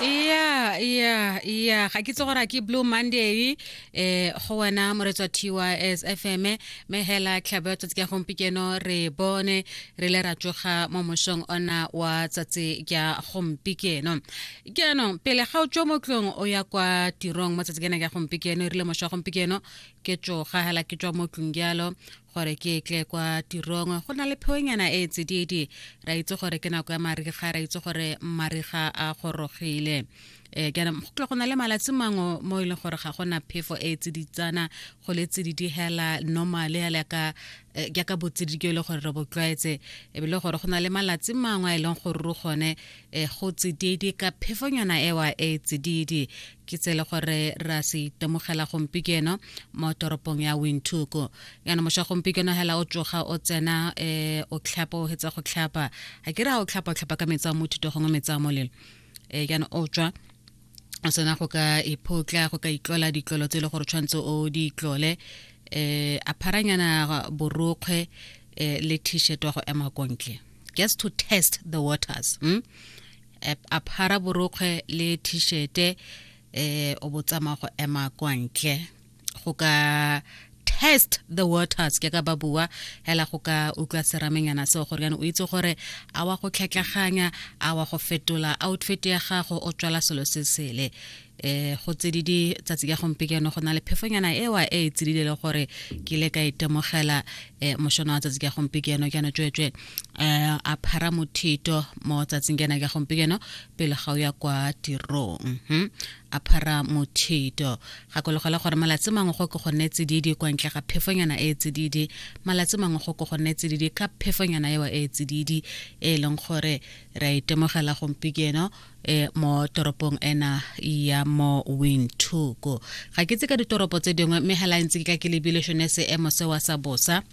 ya ya ya ga ke tse gore ke blue monday eh go wena moretswa tys fm me hela tlhabo ya tsatsi ka gompikeno re bone re le ra tsoga mo mosong ona wa tsatsi ka gompikeno keno pele ga o tswa mo tlong o ya kwa tirong mo tsatsi kena ka gompikeno e rile moswa gompikeno ke tsoga hela ke tswa mo tlong jalo gore ke tle kwa tirong go na le pheonyana e tsididi ra itse gore ke nako ya mariga ra itse gore mariga a gorogile um kana go tle go na le malatsi mangwe mo e leng gore ga gona phefo e tsiditsana go le tsididi hela normal hela ka eh, jaaka botsididi ke e le gore re botlwaetse e bile gore go na le malatsi mangwe a e leng gore ro gone e go tsididi ka phefonyana ewa e tsididi ke tse le gore ra se itemogela gompikeno mo toropong ya wintuku yana moša gompikeno hela o tsoga o tsena um o tlhapa o hetsa go tlhapa ga ke re ga o tlhapa o tlhapa ka metsi a mothuto gongwe metsi a molelo um yana o tswa o tsena go ka iphotla go ka itlola ditlolo tse e le gore tshwanetse o di itlole um a pharanyana borokgwe um le t-shirt wa go ema kontle just to test the waters hmm? a phara borokgwe le t-shirte eh o botsama go ema kwa ntle go ka test the waters ke ka ba bua hela go ka utlwa seramenyana seo gore yana o itse gore a wa go tlhetlaganya a wa go fetola outfit ya gago o tswela selo se sele eh go tsedidi tsatsi ya gompekeno go na le phefonyana ewa e e tsedile le gore ke ile ka itemogela eh mošono wa tsatsi ya gompekeno ke yana tswetswe eh a phara mothito mo tsatsing ke yana ya gompekeno pele ga o ya kwa tirong mhm. a phara mothito gakologela gore malatsi mangwe go ke go nne tsedidi kwa ntle ga phefonyana e e tsedidi malatsi mangwe go ke go nne tsedidi ka phefonyana ewa e e tsedidi e leng gore re a itemogela gompekeno e mo toropong ena ya mo windhoek ga ke tse ka ditoropo tse dingwe mme hela ntse ke ka ke lebile shone seemo sewa sa bosa